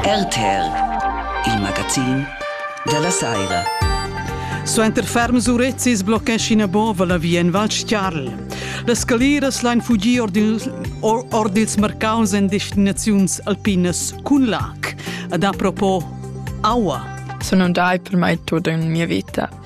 RTR, il magazin dalla Saira. Suenter ferms urezzis bloccescina Bova la via en Val Stiarl. Las scaliras lain fugir ord ils, or, ord ils marcaus en destinaziuns alpinas cun lac. Ad apropos aua. Sono un dai per mai tutto in mia vita.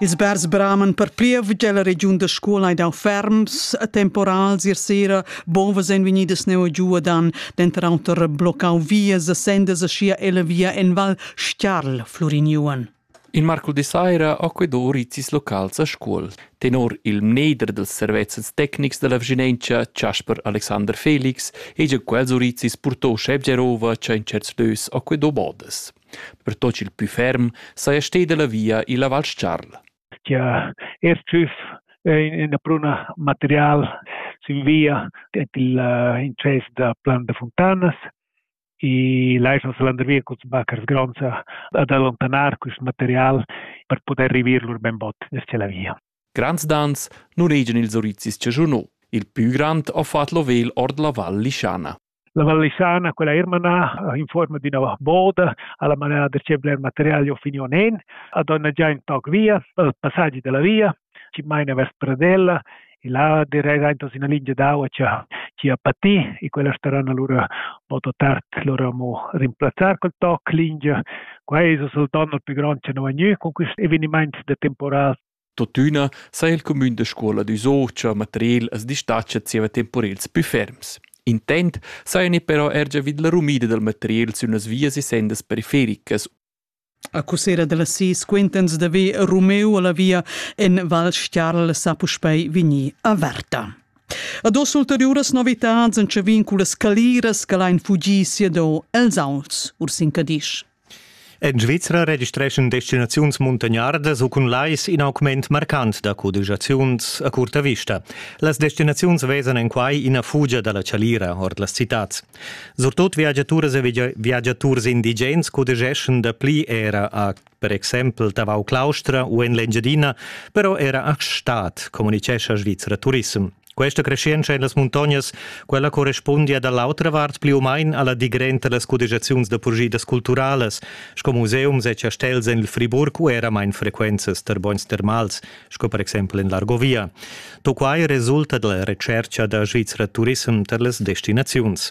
Ils bers braman per plievgia la regiun da scola e dau ferms e temporals ier sera bovas en vegnidas neu giu dan denter auter bloccau vias e sendas e sia ella via en val Stiarl fluriniuan. In marcul de saira ha quei do rizis locals a scuol. Tenor il mneder dels servezzens tecnics della Vigilenza Chasper Alexander Felix hegia quels urizis purtò Schebgerova cha in certs lös ha quei do bodas. pertut ch'il pü ferm saja steda la via illa Val Scarl. Stia SCF è ina pruna material sin via en il eh, incess da Plan de Fontanas e Leisons Landervia cuz Backers Gronza ad allontanar quest material per poter rivir lur ben bot verso la via. Grands dans nuregian ils orizis che giuno. Il pü grand ha fatto l'ovel ord la Val Lischana. La Val Lisana, quella eir manà in fuorma d'üna borda, a la manera da che bler material ho finiu nen, ha dona già ün toc via, il passagi della via, chi maina vers Pradella, e là direi anche una linea d'aua che ci ha patì e quella staranno allora molto tardi loro amo rimplazzare col toc linea qua è il donno più grande che non ha con questo evenimenti da temporale Tuottüna s'ha il cumün da scuola d'üsò cha materiel as distatscha zieva temporels pü ferms. Intent sajani però eir giavüd la rumida dal materiel sün las vias e sendas perifericas Accussera da las sis quintans da ve Romeu a la via en Val Stiarl sa puspei vegnir averta. Ad os ulteriuras novitads en chavin cu las caliras che lain fugir siado els auns ur sin Cadisch. En Svizra registreschan destinaziuns muntagnardas u cun lais in augment marcant da codigiaziuns a curta vista. Las destinaziuns vesan en quai ina fugia da la chalira ord las citads. Surtot viagiaturas e viagiaturs indigens cudigeschan dapli era a per exempel Tavau-Claustra u en l'Engiadina, però era a Stad, communicescha Svizra Turism. Questa crescenza en las muntognas, quella correspundia da l'autra vart pli u main a la digrent da las cudegiaziuns da purgidas culturalas, sco museums e chastels en il Friburg u era main frequentas tar bogns termals, sco per exempel en l'Argovia. Tutto quai resulta da la retschertga da Svizra Turissem tar las destinaziuns.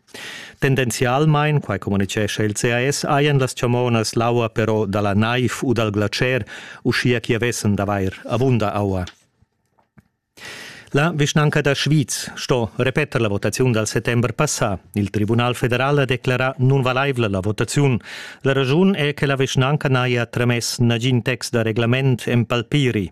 Tendenzialmain, quai communitgescha il CAS, hajan las chamonas l'aua però da la naiv u dal glatscher, uschia ch'i avessan d'avair avunda aua. La vischnanca da Schwyz sto repeter la votaziun dal settember passà. Il Tribunal federal ha declerà nunvalaivla la votaziun. La raschun è che la vischnanca n'haja tramess nagin text da reglament en palpiri.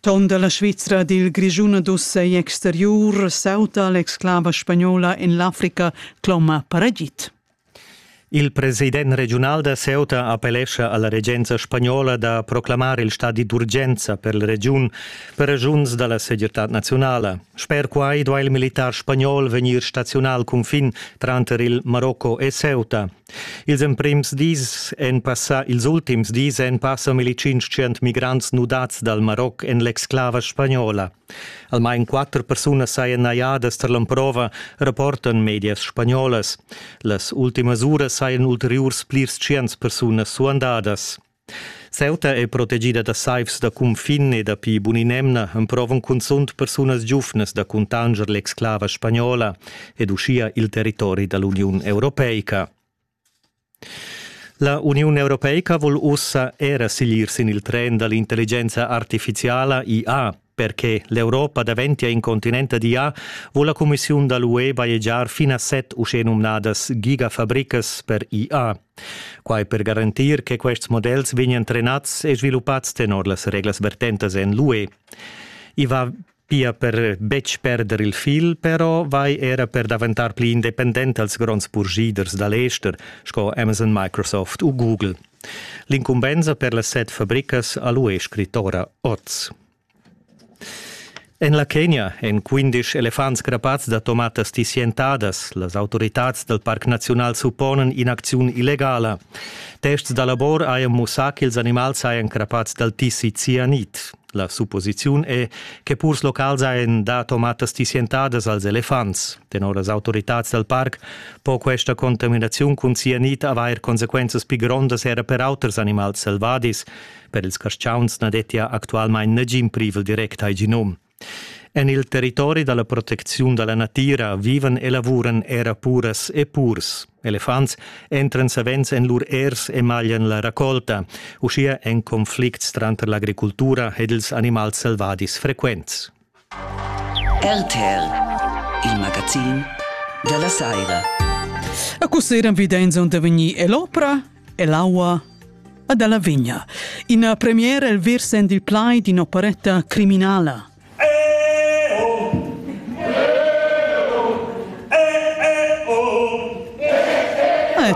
Ton da la Svizra dil Grischun ad uss ei exteriur sauta l'exclava spagnola en l'Africa cloma paragit. Il president regiunal da Ceuta appellescha alla regenza spagnola da proclamar il stadi d'urgenza per la regiun per ragiuns dalla segirtad nazionala. Sper quai duai il militar spagnol vegnir stazional cunfin tranter il Marocco e Ceuta. Ils emprims dis èn passà ils ultims dis èn passa milli tschintschient migrants nudads dal Maroc en l'exclava spagnola. Almain quatter persunas sajan najadas tar l'emprova, rapportan medias spagnolas. Las ultimas uras sajan ulteriurs plirs tschients persunas suandadas. Ceuta e protegida da saivs da cunfin e dapi bun'in'emna emprovan cunzunt persunas giuvnas da cuntanger l'exclava spagnola ed uschia il territori da l'Uniun europeica. La Uniun europeica vul ussa era siglir sin il tren da l'intelligenza artifiziala IA Per che l'Europa daventia in continent ad IA, vul la cumissiun da l'UE bajegiar fin a set uschenumnadas gigafabricas per IA. Quai per garantir che quests models vegnan trenads e sviluppads tenor las reglas vertentas en l'UE. I va pia per betg perder il fil, però vai era per daventar pli independent als gronds purschiders da l'ester sco Amazon, Microsoft u Google. L'incumbensa per las set fabricas ha l'UE scrit ora oz. En la Kenia èn quindisch elefants grappads da tomatas tissientadas. Las autoritads dal Parc Naziunal supponan in'acziun illegala. Tests da labor hajan mussà ch'ils animals hajan crappads dal tissi cianit. La supposiziun è, che purs locals hajan dà tomatas tissientadas als elefants. Tenor las autoritads dal parc po questa contaminaziun cun cianit avair consequenzas pli grondas era per auters animals selvadis. Per ils carstgauns na dettia actualmain nagin privel direct al genum. En il territori da la protecziun da la natira vivan e lavuran era puras e purs. Elefants entran savens en lur ers e maglian la racolta, uschia en conflicts tranter l'agricultura ed ils animals selvadis frequents. RTL, il magazin da la saira. E così eran videins onde vegnì l'opera e l'aua ad alla vigna. In premiere il virsen il plai di un'operetta criminala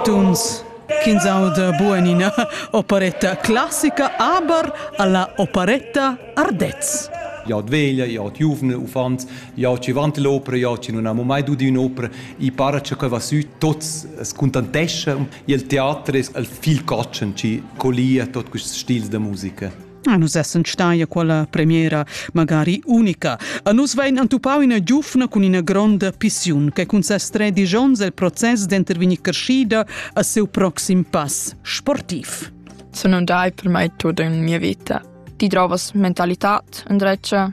tuns ch'ins auda bugen ina operetta classica, aber alla operetta Ardez. Jad veglia, jad giuvne uffants, jad ci vant l'opera, jad ci non amo mai dudi un'opera, i para che quei va sü, tots scontantescha, il teater es il viel catschen ci collia tot quests stils da musica. Ah, nus essan stai a quella premiera magari unica. A nus vein antupau ina giufna cun ina gronda pissiun che cun ses tredici onns el process d'intervegnir crescida a seu proxim pass sportiv. Sun andai per mai tut in mia vita. Ti trovas mentalità, indrezza,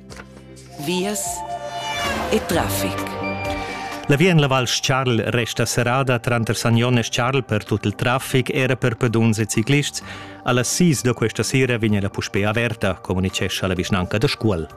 Vias e traffic. La via en la Val Charl resta serrada tranter Sagnon e Charl per tut il traffic, era per peduns e ciclists. A las 6 da questa sera vegn la puspè averta, communicescha la vischnanca da Scuol.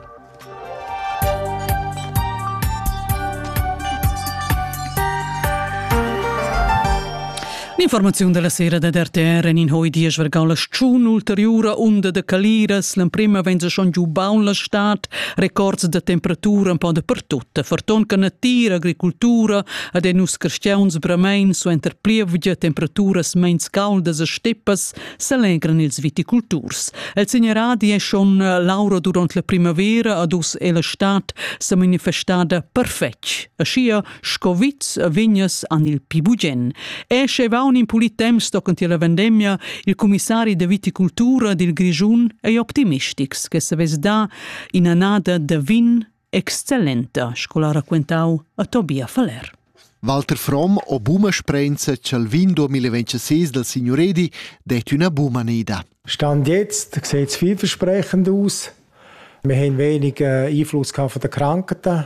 L'informaziun della sera da RTR en in hoi dies vergau la schun ulteriura unda de caliras, l'emprema vegn se schon giu baun la stad, records de temperatura un po de pertutta, ferton che natir, agricultura ad en us cristians bramein suenter plievgia temperaturas meins caldas e steppas s'allegran ils viticulturs. El segneradi è schon eh, laura durant la primavera ad us e la stad sa manifestada perfetg. Aschia Scoviz e vignas an il pi bugen. E sche vaun in pulit temps tocanti la vendemia, il comissari de viticultura dil Grischun ei optimistics che se vess da inanada de vin excellenta, sco la raquentau a Tobia Faller. Walter Fromm o buma sprenza chal vin 2026 del signoredi det üna buma nida. Stand jetzt sieht es vielversprechend aus. Wir haben wenig Einfluss von den Krankheiten.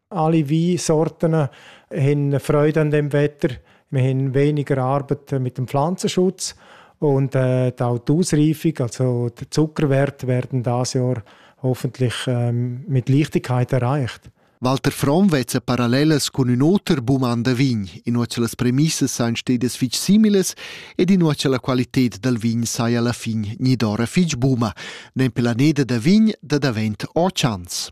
alle Weinsorten haben Freude an dem Wetter. Wir haben weniger Arbeit mit dem Pflanzenschutz und äh, auch die Ausreifung, also die Zuckerwerte, werden dieses Jahr hoffentlich ähm, mit Leichtigkeit erreicht. Walter Fromm vezza parallelas cun ün oter bum an da vin, innuatscha las premissas sain stedas fich similes ed innuatscha la qualited dal vin sai alla fin gnidora fich buma, nempe la neda da vin da davent o chans.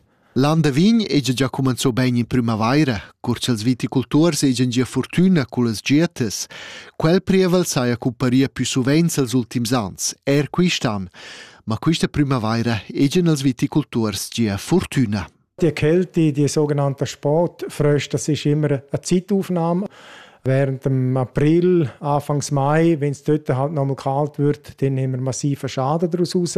L'an da vin hegia gia cumenzà bain in primavaira, cur ch'els viticulturs hegian gia fortüna cullas dietas. Quel prievel saja cumparia pü suvenz els ultims ans, eir quist'an. Ma quista primavaira hegian els viticulturs gia fortüna. Die Kälte, die sogenannte Sportfröste, das ist immer eine Zeitaufnahme. Während dem April, Anfangs Mai, wenn es dort halt nochmal kalt wird, dann haben wir massiven Schaden daraus raus.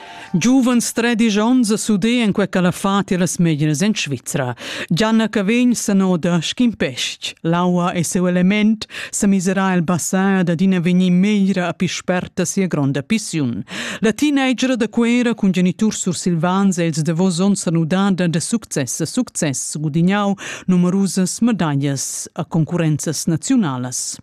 Giuvens tredisch onns a suder en quei ch'el ha fatg las meglieras en Svizra. Gianna Cavegn sanoda sc'in pestg. L'aua e seu element sa misera el basar dad ina vegnir meglra a pi sperta sia gronda pissiun. La teenager da Cuera cun geniturs sursilvans e ils davos onns han udada da success a success gudignau numerusas medaglias a concurenzas naziunalas.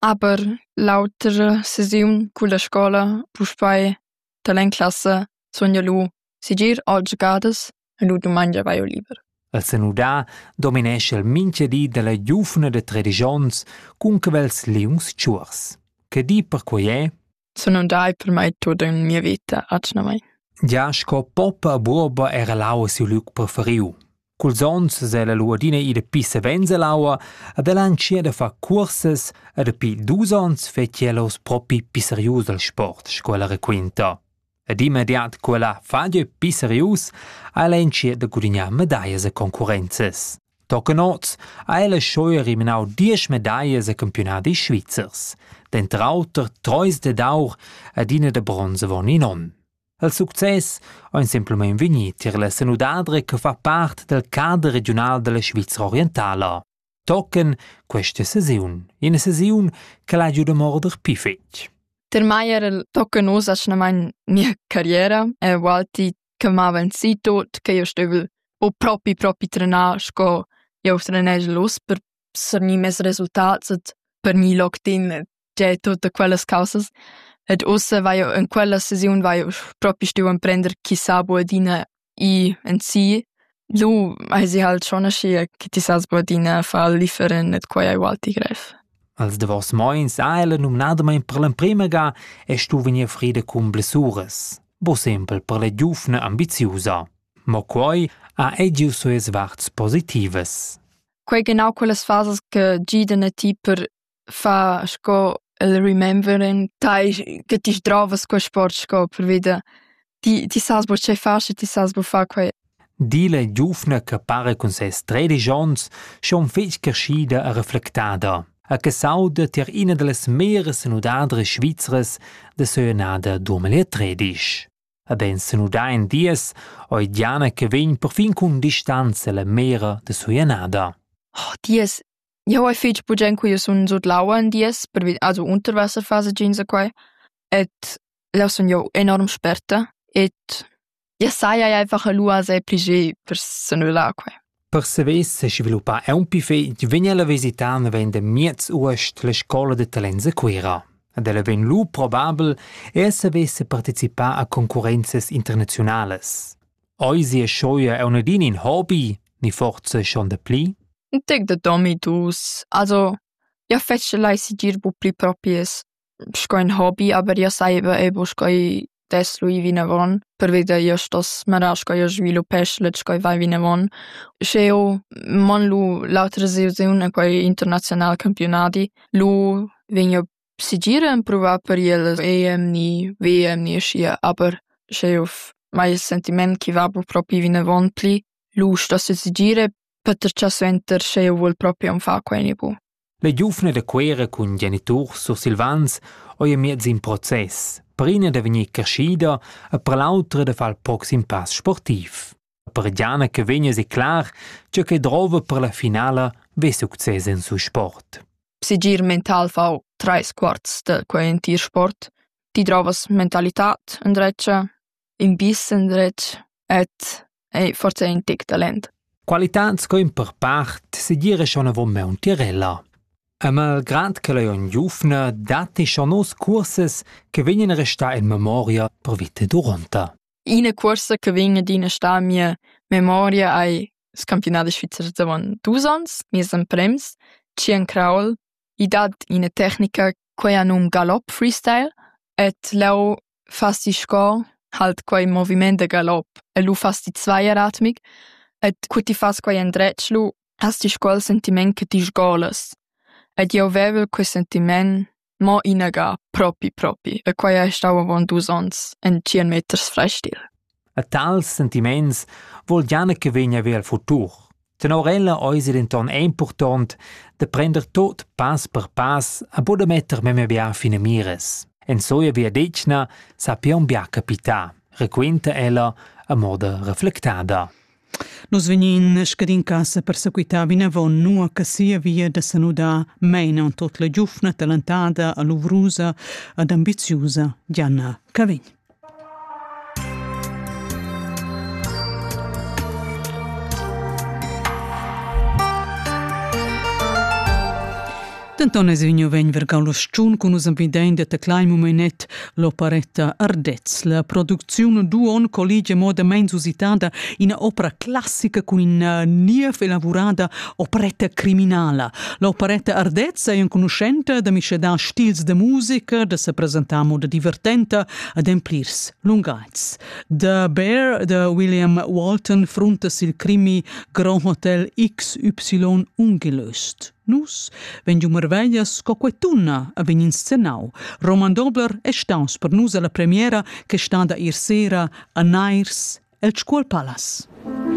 Aber l'autra sesiun culla scola puspei talent classa sun jeu lu segir aunc giadas e lu dumangia vai jeu liber. El senudà dominescha il mincha di dalla giuvna da tredisch ons cun quels liungs tschuors. Che di perquei è? Sun dai per mai tut in mia vita atgnamain. Gia sco poppa buoba era l'aua siu liug preferiu. Culs ons se la luadina ida pissa venza l'aua ad el anchia da far cursas e dapi dus ons fetg els propi pisserius al sport, sco ella raquinta. Ed immediat quella faglia pli serius ha ella entschiet da gudignar medaglias e concurrenzas. Tochen oz ha ella scheu eliminau diesch medaglias e campiunadis svizzers, denter auter treis dad aur ed ina da bronz avon in onn. Il success ein semplamein vegni tier la senudadra che fa part dal cader regiunal dalla Svizra orientala. tochen questa sesiun, ina sesiun che l'ha giu da morder pli fetg. Per mai era il tochen oz atgnamain mia carriera, è Walti che m'aveva sì tot che io stevel o propi propi trenar sco io trenegel los per sernir mes resultats et per mi loctin Già tutta quellas causas. Ed ussa vaiu in quella sesiun vaiu propi stuiu emprender chi sabu adina i en si. Lu hai si halt schon aschia che ti sas bu adina far differen et quai ei ualti grev. Als davos moins ha ella numnadamain per l'emprima ga e stu vegnir frida cun blessuras, bo sempel per la giufna ambiziusa. Mo quai ha ei giu sues varts positivas. Quei genau quellas fasas che gidan a ti per fa sco el remembering tai che ti sdrovas quei sport sco pervida. Ti ti sas buca tgei far, sche ti sas buca far quei. Di la giuvna che para cun ses tredisch onns schon fetg creschida e reflectada e che s'auda tier ina dallas meras senudadras svizras da seunada duamila tredisch. E ben senuda in dies, oi Diana che vegn perfin cun distanza la mera da suanada. Oh, dies Jau hai fich bugen quia sun sut l'aua ün dies pervi also Unterwasserphase giinsa quai ed là sun jau enorm sperta ed ja saja einfach lù asè pli geh per s'annullar quai. Per savair sesviluppar aunc fich vegn ella visità naven da miez uost la scoula da talents a Cuira. Ed ella vegn lù probabel er saver se participar a concurrenzas internaziunalas. Eisi e schoia è unadin in hobby, ni forza schon de pli? In tec de domi dus. Also, ia fece lai sigir bu pli propies sco in hobby, aber ia saiva ebo sch'ei dess lui vinavon, perveda ia stoss manar sch'ei sviluppesch let sch'ei vai vinavon. Sch'eu mon lu l'autra sesiun a quei international campionadi, lu vegn eu Segir empruvar per iellas emni, vemni aschia, aber sche jeu mai il sentiment ch'i va bu propi vinavon pli, lusch da sesegir e patertgar suenter sche jeu vul propi aunc far quei ni bu. La giuvna da Cuera cun geniturs sursilvans ei miez in process, per ina da vegnir creschida e per l'autra da far il proxim pass sportiv. per Gianna che vegna declar tge che drova per la finala ve success en su sport. Segir mental fau trais quarts de quei entir sport. Ti drovas mentalitad in dretg, in bis in dretg et ei forse in tic talent. Qualità sco in per part segir è schon avon me un tirella. E malgrad che lei on giufna, dati schon nos curses che vegnan restà in memoria per vite duronta. Ina cuorsa che vegn adina a star en mia memoria ei il campionadi svizzer d'avon dus onns, nies emprems, Skiern Kraul. I dat ina tecnica quei ha num Galopp Freestyle ed leu fas ti sco halt quei moviment da galopp e lu fas ti zweieratmig ed cu ti fas quei endretg lu has ti sco il sentiment che ti sgolas. Ed jeu vevel quei sentiment Mo inaga, propi propi, e quei ei stau avon dus onns, en tschien meters frestil. A tals sentiments vol Jana che vegna ver il futur. Tenor ella eis ei denton impurtont da prender tot pass per pass a buca metter memia bia finamiras. En soia viadetgna sappion bia capitar, raquinta ella a moda reflectada. Nus vegnin scadin casa per sequitar vinavon, nua che sia via da senudar meina en tot la giufna talentada, aluvrusa ed ambiziusa Diana Cavegn. Denton es vegniu vegn vergau lo stun cun nus empidein de teclar in momenet l'operetta Ardez. La producziun Duon collige modamein usitada ina opera classica cun ina niev elaborada operetta criminala. L'operetta Ardez è enconuschenta da miscedar stils de musica, da se presentar moda divertenta, ademplirs lungaits. The Bear de William Walton fruntas il crimi Grand Hotel XY ungelöst. Nus vegn giu marveglias sco quei tunna a vegn inscenau. Roman Dobler è staus per nus alla premiera che stada ir sera a Nairs el Scuol Palace.